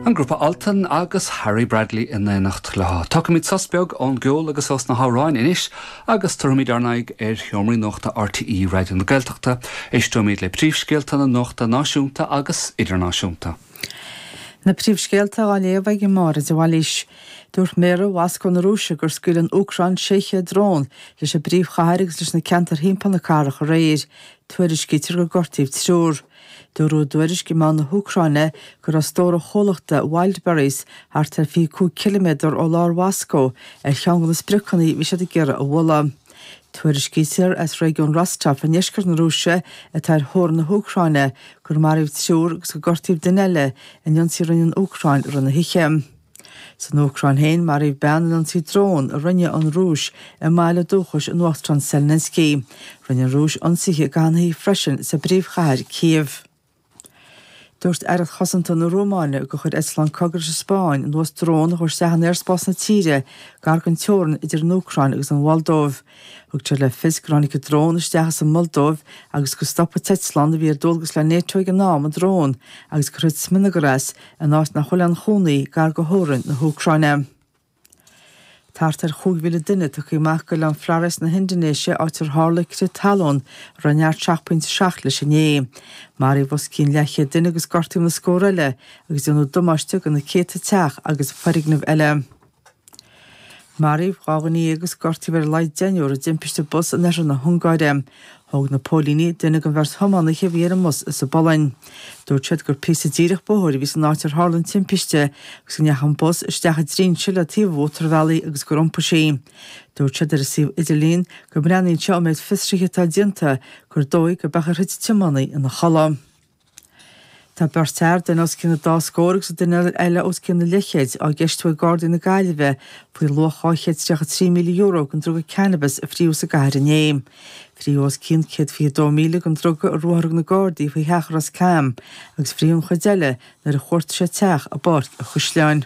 An grúpa Altan agus Harry Bradley in éineacht leo. Tógfaimid sos beag ón gceol agus ós na hamhráin anois agus tabharfaimid ár n-aghaidh ar sheomraí nuachta RTÉ Raidió na Gaeltachta. Éisteoimid le príomhscéalta na nuachta náisiúnta agus idirnáisiúnta. Na príomhscéalta á léamh ag Máire de Bhailís. Dúirt méara Mhoscó na Rúise gur scaoil an Úcráin 600 drón leis an bpríomhchathair agus leis na ceantair thimpeall na cathrach aréir. Tuairiscítear gur gortaíodh triúr. Dúradh i dtuairisc i meáin na hÚcráine go raibh stór an chomhlachta Wildberries, thart ar 25 ciliméadar ó lár Mhoscó, ar cheann de na spriocanna a bhí siad ag iarraidh a bhualadh. Tuairiscítear as réigiún Rostov i ndeisceart na Rúise atá ar theorainn na hÚcráine gur maraíodh triúr agus gur gortaíodh duine eile in ionsaí a rinne an Úcráin i rith na hoíche. San Úcráin féin, maraíodh bean in ionsaí drón a rinne an Rúis i mbaile dúchais an Uachtaráin Zelensky. Rinne an Rúis ionsaithe go leith freisin sa bpríomhchathair, Cív. Dúirt aireacht chosanta na Rúmáine gur chuir eitleán cogaidh leis an Spáinn anuas drón a chuaigh isteach in aerspás na tíre gar den teorainn idir an Úcráin agus an Mholdóiv. Tugtar le fios gur tháinig an drón isteach as an Mholdóiv agus gur stop an t-eitleán a bhí ar dualgas le NATO ag an am an drón agus gur thit smionagar as, in áit nach bhfuil aon chónaí, gar go theorainn na hÚcráine. Tá thart ar chúig mhíle duine tugtha amach go oileán Flores na hIndinéise, áit ar tharla crith talún a raibh neart seacht pointe seacht leis inné. Maraíodh os cionn leathchéad duine agus gortaíodh na scórtha eile, agus déanadh damáiste do na céadta teach agus foirgneamh eile. Maraíodh dháréag agus gortaíodh ar a laghad deichniúr i dtimpiste bus in oirthear na hUngáire. Thóg na póilíní duine den bheirt thiománaithe a bhí ar an mbus as an bPolainn. Dúirt siad gur píosa díreach bóthair a bhí san áit ar tharla an timpiste agus go ndeachaigh an bus isteach i dtrínse le taobh an mhótarbhealaigh agus gur iompaigh sí. Dúirt siad ar an suíomh idirlín go mbreathnaíonn sé ón méid fiosraithe atá déanta gur dóigh gurb amhlaidh a thit an tiománaí ina chodladh. Tá beirt fhear, duine os cionn a dá scór agus an duine eile os cionn an leathchéid, á gceistiú ag Gardaí na Gaillimhe faoi luach €233,000 den druga cannabis a frítheadh sa gcathair inné. Frítheadh os cionn 122,000 den druga i ruathar a thug na Gardaí faoi theach i Ros Cam agus frítheadh an chuid eile nuair a chuartaigh siad teach i bPáirc an Chaisleáin.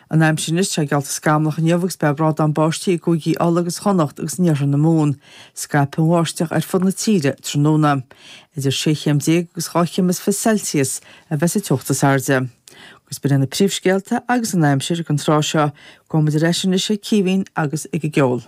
An aimsir anois, tá sé geallta scamallach inniu agus beidh brádán báistí i gCúigí Uladh agus Chonnacht agus in iarthar na Mumhan. Scaipfidh an bháisteach ar fud na tíre tráthnóna. Idir sé chéim déag agus dhá chéim is fiche Celsius a bheidh sa teocht is airde. Agus b'in iad na príomhscéalta agus an aimsir ag an tráth seo. Gabhfaimid ar ais anois ag Caoimhín agus ag an gceol.